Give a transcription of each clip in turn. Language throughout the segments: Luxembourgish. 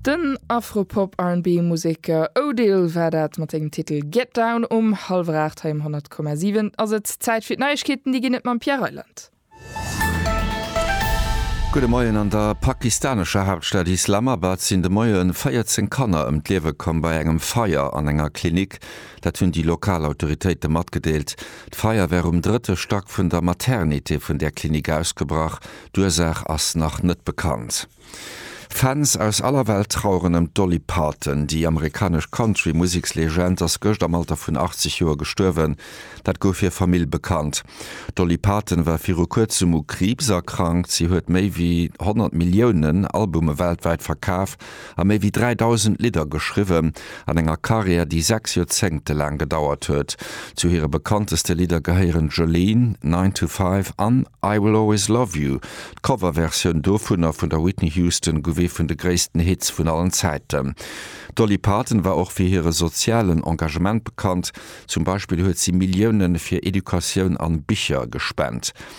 Den Afro-Pop-RB-Museker Odile war dat mat sengem Titel Get Down um hallwer 8 hei um 100,7. Ass et Zäit fir d'Neiegkeeten, déi ginn et mam Pierre Reyland. Gudde Moien, An der pakistanescher Haaptstad Islamabad sinn de Moie 14 Kanner ëm d'Liewe komm bei engem Feier an enger Klinik. Dat hunn déi lokal Autoritéite matgedeelt. D'Feier wär um drëtte Stack vun der Maternité vun där Klinik ausgebrach. D'Ursaach ass nach net bekannt. Fans aus aller Welt traueren ëm d'Dolly Parton. Déi amerikanesch Country-Musekslegend ass gëscht am Alter vun 80 Joer gestuerwen. Dat gouf hir Famill bekannt. D'Dolly Parton war viru kuerzem u Kriibs erkrankt. Si huet méi wéi 100 Milliounen Albume weltwäit verkaaft a méi wéi 3.000 Lidder geschriwwen, an enger Karriär, déi sechs Joerzéngte laang gedauert huet. Zu hire bekannteste Lidder gehéieren Jolene, Nine to Five an I Will Always Love You. D'Coverversioun dovunner vun der Whitney Houston gouf ee vun de gréissten Hits vun allen Zäiten. D'Dolly Parton war och fir hire sozialen Engagement bekannt, zum Beispill huet si Millioune fir Educatioun an Bicher gespent.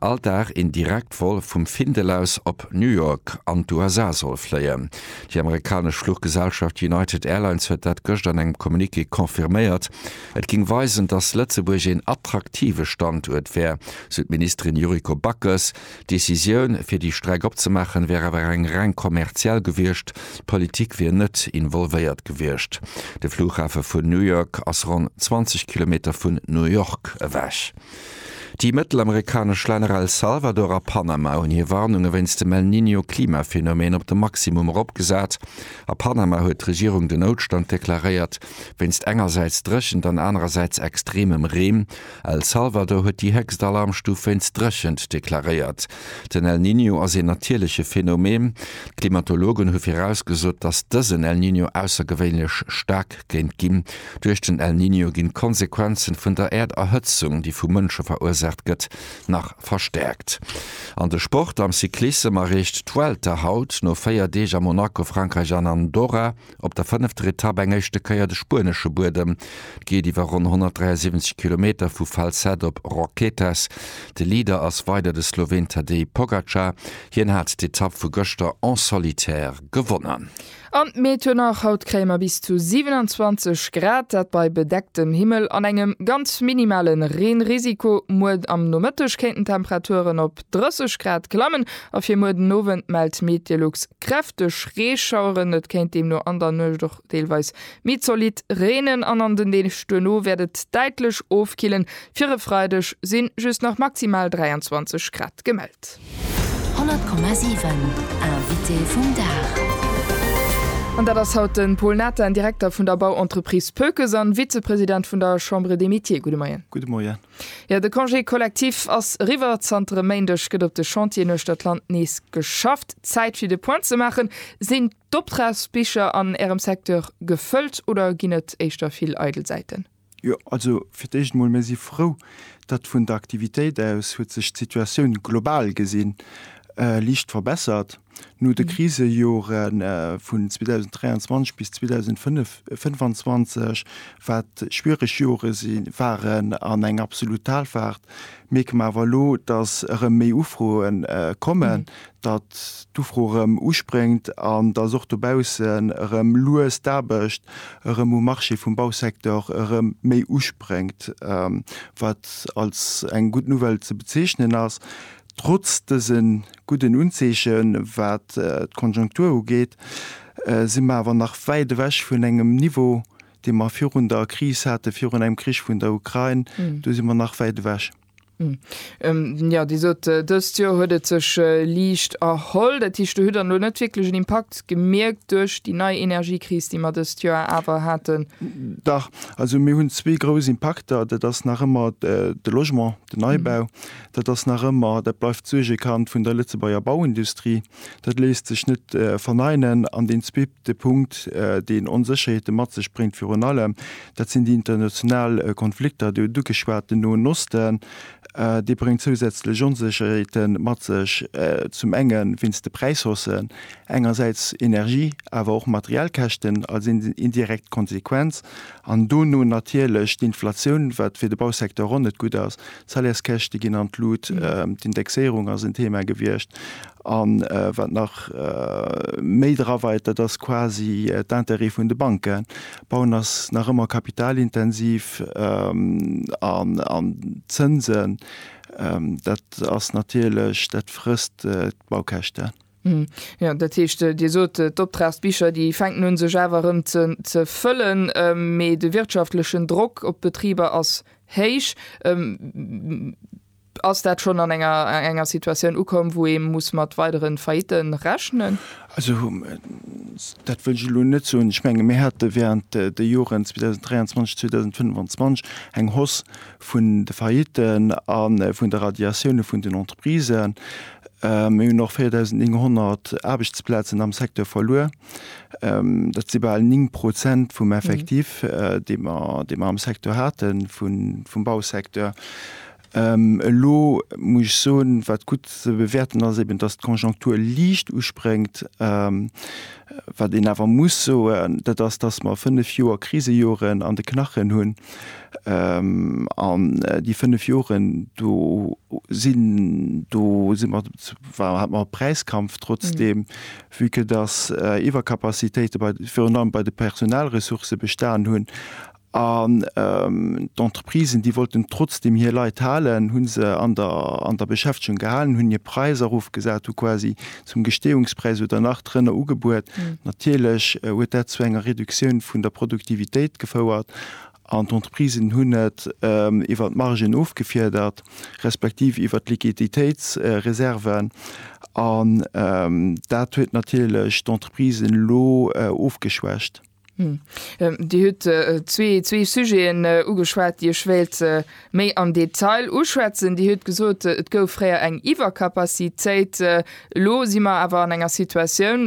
All Dag een Direktvol vum Findel aus op New York an d'USA soll fléien. Déi amerikanesch Fluchgesellschaft United Airlines huet dat gëscht an engem Communiqué confirméiert. Et géing weisen, datt Lëtzebuerg een attraktive Standuert wär, sou d'Ministerin Yuriko Backes. D'Decisioun, fir déi Streck opzemaachen, wär awer eng reng kommerziell gewiescht. D'Politik wier net involvéiert gewiescht. De Flughafe vun New York ass ronn 20 Kilometer vun New York ewech. Déi mëttelamerikanesch Länner El Salvador a Panama hunn hir Warnunge wéinst dem El Niño Klimaphenomeen op de Maximum eropgesat. A Panama huet d'Regierung den Noutstand deklaréiert, wéinst engersäits Dréchent an anerersäits extremem Reen. El Salvador huet déi héchst Alarmstuf wéinst Dréchent deklaréiert. Den El Niño ass een natierleche Phenomen. D'Klimatologen hu virausgesot, datt dësen El Niño aussergewéinlech staark géint ginn. Duerch den El Niño ginn d'Konsequenzen vun der Äerderhëtzung, déi vu Mënsche verursaacht gëtt, nach verstäerkt. An de Sport, Am Cyclissem erreecht d'Vuelta haut no 4 Deeg a Monaco, Frankräich an Andorra, Op der fënnefter Etapp eng éischte Kéier de spuenesche Buedem. Et geet iwwer ronn 173 Kilometer vu Falset op Roquetas. De Leader ass weider de Sloween Tadej Pogacar. Hien hat d'Etapp vu gëschter en solitaire gewonnen. An d'Meet huet nach, haut kréie mer bis zu 27 Grad, dat bei bedecktem Himmel an engem ganz minimale Reenrisiko. Muer am Nomëtteg kéinten d'Temperaturen op. 30 Grad klammen a fir muer den Owend mellt Meteolux kräfteg Reeschaueren. Et kéint deemno an der Nuecht och deelweis méi zolidd reenen an an den Deeg duerno wäert et däitlech ofkillen. Fir e Freideg si just nach maximal 23 Grad gemellt. 100,7 Invité vum Dag. An dat ass haut de Paul Nathan, Direkter vun der Bauentreprise Pökes an Vizepresident vun der Chambre des Métiers. Gudde Moien. Gudde Moien. Jo, de Congé collectif ass eriwwer. Zanter e Méindeg gëtt op de Chantieren uechter d'Land nees geschafft. Zäit fir de Point ze maachen. Sinn d'Optragsbicher an Ärem Secteur gefëllt oder ginn et éischter vill eidel Säiten? Jo, also fir d'éischt emol, mir si frou, datt vun der Aktivitéit aus huet sech d'Situatioun global gesinn liicht verbessert. No de Krisejore vun 2023 bis 2025, wat schwiereg Jore waren an eng absolut Talfaart, mierke mer awer elo, datt erëm méi Ufroe kommen, datt d'Ufro erëm uspréngt an datt och dobaussen erëm lues d'Aarbecht erëm um Marché vum Bausecteur erëm méi uspréngt, wat als eng gutt Nouvelle ze bezeechnen ass. Trotz dëse gudden Unzeeche wat d'Konjunktur ugeet, si mer awer nach wäit ewech vun engem Niveau, dee mer virun der Kris hate virun engem Krich vun der Ukrain. Do si mer nach wäit ewech. Jo, Dir sot, dëst Joer huet et sech liicht erholl. Dat heescht, do hutt Der elo net wierklech en Impakt gemierkt duerch déi nei Energiekris, déi mer dëst Joer awer haten? Dach. Also mir hunn zwee grouss Impakter. Dat ass nach ëmmer de Logement, den Neibau. Dat ass nach ëmmer, dat bleift d'Suergekand vun der Lëtzebuerger Bauindustrie. Dat léisst sech net verneinen. An deen zweete Punkt, deen Onsécherheete mat sech bréngt, virun allem, dat sinn déi international Konflikter. Dir hutt ugeschwat den Noen Osten. Dee bréngt zousätzlech Onsécherheete mat sech, zum enge wéinst de Präishaussen, engersäits Energie, awer och materiell Käschten als indirekt Konsequenz, an dono natierlech d'Inflatioun, wat fir de Bausecteur och net gutt ass. D'Salaires-käschte ginn an d'Lut, d'Indexéierung ass en Thema gewiescht a wat nach méi draweit, dat ass quasi d'Intérêt vun de Banken. Bauen ass nach ëmmer kapitalintensiv an d'Zënsen, dat ass natierlech, dat frësst d'Baukäschten. Hm, jo, dat heescht, Dir sot, d'Optragsbicher, déi fänken un sech awer erëm ze ze fëllen, mee de wirtschaftlechen Drock op d'Betriber ass héich. Ass dat schonn an enger enger Situatioun ukomm, wou ee muss mat weidere Faillite rechnen? Also dat wëll ech elo net soen. Ech menge mir hate während de Joren 2023, 2025 eng Hausse vun de Faillitten a vun de Radiatioune vun den Entreprisen. Mir hunn och 4.900 Aarbechtsplazen am Secteur verluer. Dat si bal 9 Prozent vum Effectif, dee mer, dee mer am Secteur haten, vum Bausecteur. Elo muss ech soen, wat gutt ze bewäerten ass eben, datt d'Konjunktur liicht uspréngt. Wat een awer muss soen, dat ass, datt mer fënnef Joer, Krisejoren an de Knachen hunn. An déi fënnef Joren, do sinn, do si mer, hat mer e Präiskampf trotzdeem, vue que dass Iwwercapacitéite bei, virun allem bei de Personalressourcë bestanen hunn. An d'Entreprisen, déi wollten trotzdeem hir Leit halen, hu se an der, an der Beschäftegung gehalen, hunn hir Präis erofgesat, hu quasi zum Gesteeungspräis oder nach drënner ugebuet. Natierlech huet dat zu enger Reduktioun vun der Produktivitéit gefouert an d'Entreprisen hunn et iwwer d'Margen ofgefiedert, respektiv iwwer d'Liquiditéitsreserven. An dat huet natierlech d'Entreprisen elo ofgeschwächt. Dir hutt zwee Sujeten ugeschwat, déi ech wéilt méi am Detail uschwätzen. Dir hutt gesot, et gouf fréier eng Iwwercapacitéit, elo si mer awer an enger Situatioun,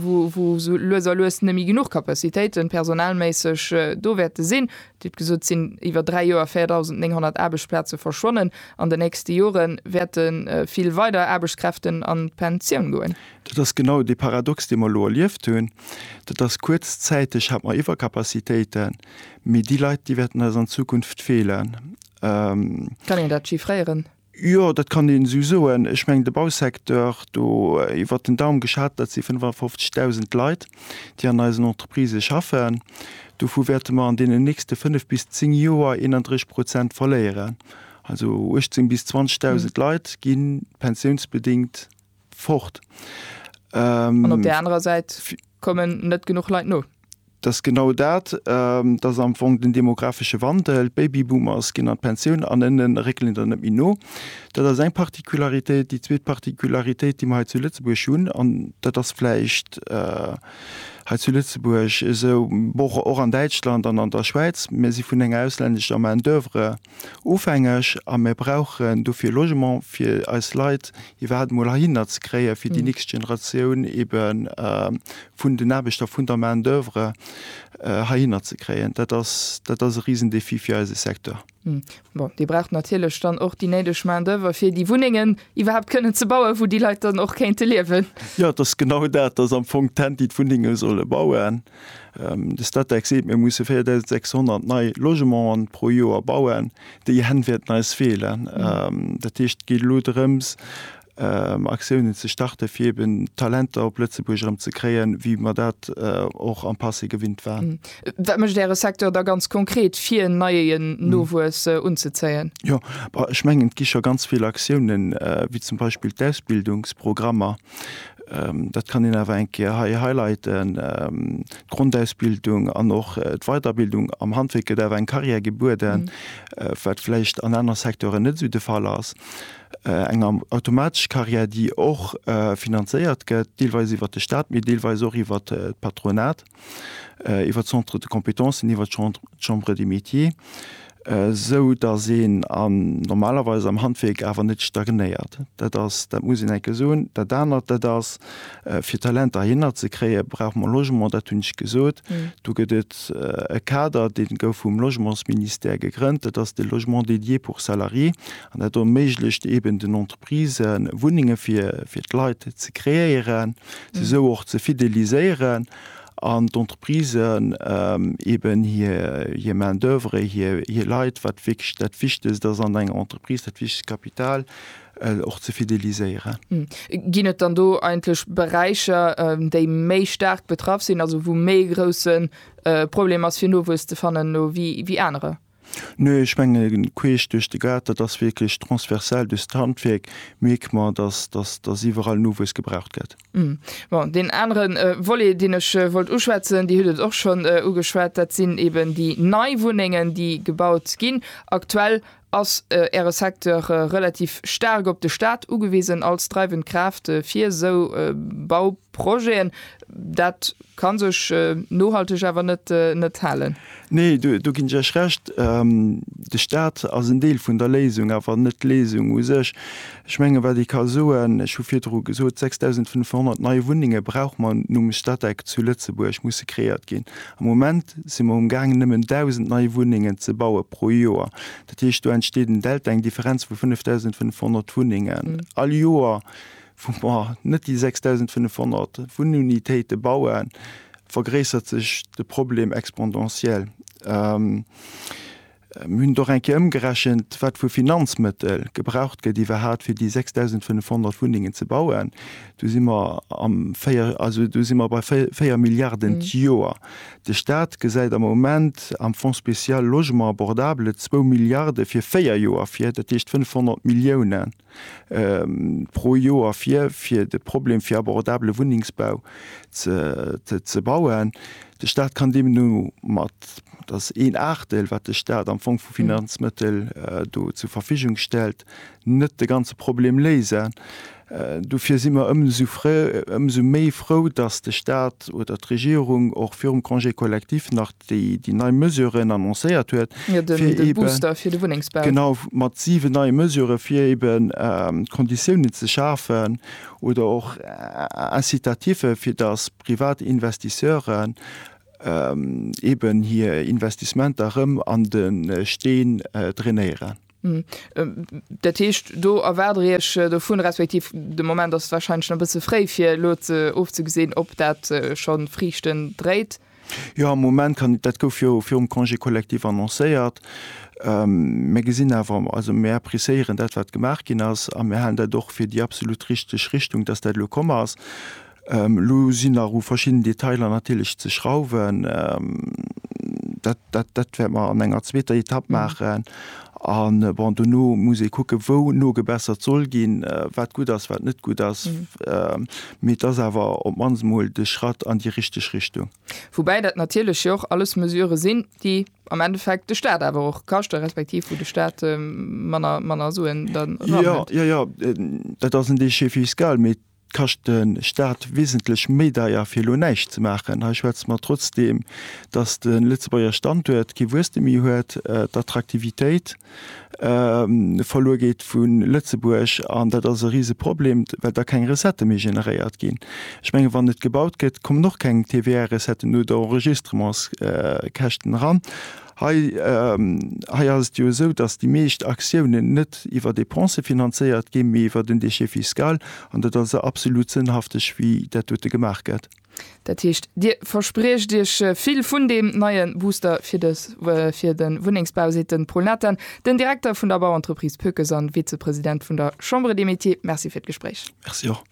wou esou lues a lues net méi genuch Capacitéiten personalméisseg do wäerte sinn. Dir hutt gesot, et sinn iwwer dräi Joer 4.900 Aarbechtsplaze verschwonnen. An den nächste Jore wäerte vill weider Aarbechtskräften an d'Pensioun goen. Dat ass genau dee Paradox, dee mer elo erlieft hunn. Dat ass, kuerzzäiteg hate mer Iwwercapacitéiten, mee déi Leit, déi wäerten eis an Zukunft feelen. Kann een dat chiffréieren? Jo, dat kann een esou soen. Ech mengen, de Bausecteur, do iwwer den Daum geschat, dat si 55.000 Leit, déi an eisen Entreprisë schaffen. Dovu wäerte mer an deenen nächste fënnef bis zéng Joer 31 Prozent verléieren. Also 18 bis 20.000 Leit gi pensiounsbedéngt fort. An op där anerer Säit kommen net genuch Leit no. Dat ass genau dat. Dat ass am Fong den demographesche Wandel. D'Babyboomers ginn an d'Pensioun an ënne réckelen der net méi no. Dat ass eng Particularitéit. Déi zweet Particularitéit, déi mer hei zu Lëtzebuerg hunn, an dat ass vläicht hei zu Lëtzebuerg esou, och an Däitschland an an der Schwäiz, Mir si vun enger ausländescher Main d'oeuvre Ofhängeg a mir brauchen dofir Logement fir eis Leit iwwerhaapt emol heihinner ze kréien, fir déi nächst Generatioun ebe vun den Aarbechter, vun der Main d'oeuvre heihinner ze kréien. Dat ass, dat ass e Risendéfi fir eise Secteur. Bon, Dir braucht natierlech dann och déi néideg Main d'oeuvre fir déi Wunnengen iwwerhaapt kënnen ze bauen, wou déi Leit dann och kéinte liewen. Jo, et ass genau dat, et ass am Fong d'Hänt, déi d'Wunnenge solle bauen. De Statec seet, mir musse 4.600 nei Logementen pro Joer bauen. Déi Hänn wäerten eis feelen. Dat heescht, et geet elo drëms, Aktiounen ze starten, fir eben Talenter op Lëtzebuerg erëm ze kréien, wéi mer dat och am Passé gewinnt waren. Wat mécht Äre Secteur da ganz konkret, fir neien Nowuess unzezéien? Jo, ech mengen, et gi scho ganz vill Aktiounen, wéi zum Beispill d'Ausbildungsprogrammer, Dat kann een awer eng Kéier hei highlighten. D'Grondausbildung an och d'Weiderbildung am Handwierk gëtt awer eng Carrière gebueden, wat vläicht an anere Secteuren net esou de Fall ass. Eng automatesch Carrière, déi och finanzéiert gëtt, deelweis iwwert de Staat, mee deelweis och iwwert d'Patronat. iwwer d'Centres de compétences, iwwer d'Chambre des métiers, esou datt een normalerweis am Handwierk awer net stagnéiert. Dat ass, dat muss een enk e soen. Dat anert, dat ass, fir Talenter heihinner ze kréien, brauche mer Logement, dat hunn ech gesot. Do gëtt et e Kader, dee gouf vum Logementsministère gegrënnt, dat ass de Logement dédié pour salariés, an dat erméiglecht eeben den Entreprisen, Wunnenge fir d'Leit ze kreéieren, se sou och ze fideliséieren an d'Entreprisen eben hir Main d'oeuvre, hir Leit, wat wierklech dat Wichtegst ass an enger Entreprise, dat wichtegst Kapital, och ze fideliséieren. Ginn et dann do eigentlech Beräicher, déi méi staark betraff sinn, also wou méi e grousse Problem ass fir Nowuess ze fannen elo wéi anerer? Nee, ech menge queesch duerch de Gaart. Dat ass wierklech transversal duerch d'Handwierk, mierkt mer, dass dass iwwerall Nowuess gebraucht gëtt. Bon, deen anere Volet, deen ech wollt uschwätzen, Dir hutt et och schonn ugeschwat, dat sinn eeben déi nei Wunnengen, déi gebaut ginn. Aktuell ass Äre Secteur relativ staark op de Staat ugewisen als dreiwend Kraaft fir esou Bauprojeten. Dat Kann sech nohalteg awer net halen. Nee, do ginn ech Iech Recht. De Staat ass en Deel vun der Léisung, awer net d'Léisung u sech. Ech mengen, wat ee ka soen, ech hu virdru gesot, 6.500 nei Wunnenge brauche mer nom Statec zu Lëtzebuerg, musse kreéiert ginn. Am Moment si mer um Gaang nëmmen 1.000 nei Wunnengen ze baue pro Joer. Dat heescht, do entsteet en Delta, eng Differenz vu 5.500 Wunnengen all Joer. wou mer net déi 6.500 Wunnunitéite bauen, vergréissert sech de Problem exponentiell. Mir hunn et och eng Kéier ëmgerechent, wat vu Finanzmëttel gebraucht gëtt iwwerhaapt, fir déi 6.500 Wunnengen ze bauen. Do si mer am véier, also do si mer bei véier Milliarden d'Joer. De Stat gesäit am Moment am Fonds spécial Logement abordable zwou Milliarde fir véier Joer vir, dat heescht 500 Milliounen. pro Joer fir, fir de Problem fir abordabele Wunnengsbau ze bauen. De Staat kann deemno mat, dat ass een Aachtel, wat de Staat am Fong vu Finanzmëttel do zur Verfügung stellt, net de ganze Problem léisen. Dofir si mer ëmsou frou, ëmsou méi frou, datt de Staat oder d'Regierung och virum Congé collectif nach déi déi nei Mesuren annoncéiert huet, fir eben genau mat siwe neie Mesurë fir eben Konditiounen ze schafen oder och Incitative fir datt privat Investisseuren eben hir Investissementer erëm an de Steen drainéieren. Dat heescht, do erwaart Der Iech dovun, respektiv de Moment ass warscheinlech nach e bësse fréi, fir elo ofzegesinn, ob dat scho Friichten dréit? Jo, am Moment kann, dat gouf jo virum Congé collectif annoncéiert. Mir gesinn awer, also mir appréciéieren dat, wat gemaach ginn ass, a mir halen dat och fir déi absolut richteg Richtung, dass dat elo komm ass. Elo sinn nach u verschiddenen Detailer natierlech ze schrauwen. Dat wäerte mer an enger zweeter Etapp maachen. A bon, dono muss ee kucke wou nogebessert soll ginn, wat gutt ass, wat net gutt ass. Mee et ass awer op d'mannst emol de Schratt an déi richteg Richtung. Woubäi dat natierlech jo och alles Mesurë sinn, déi am Endeffekt de Staat awer och kaschte respektiv wou de Staat manner Suen dann eran huet. Jo, jo, jo, dat ass en Déchet fiscal. kascht de Staat wesentlech méi deier fir elo näischt ze maachen. Hei schwätze mer trotzdeem, datt de Lëtzebuerger Standuert kee Wuesstem méi huet, d'Attraktivitéit verluer gétt vu Lëtzebuerg an dat ass e rise Problem, well da keng Recettë méi generéiert ginn. Ech menge wann net gebaut gëtt, kommen och keng TVA-Recetten oder Enregistrements-Käschten eran. Hei ass et jo esou, dass déi meescht Aktiounen net iwwer Depensë finanzéiert ginn, mee iwwer den Déchet fiscal. An dat ass absolut sënnhafteg, wéi dat dote gemaach gëtt. Dat heescht, Dir verspriecht Iech vill vun deem neie Booster fir de fir de Wunnengsbau, seet de Paul Nathan, den Direkter vun der Bauentreprise Pökes an Vizepresident vun der Chambre des Métiers. Merci fir d'Gespréich. Merci och.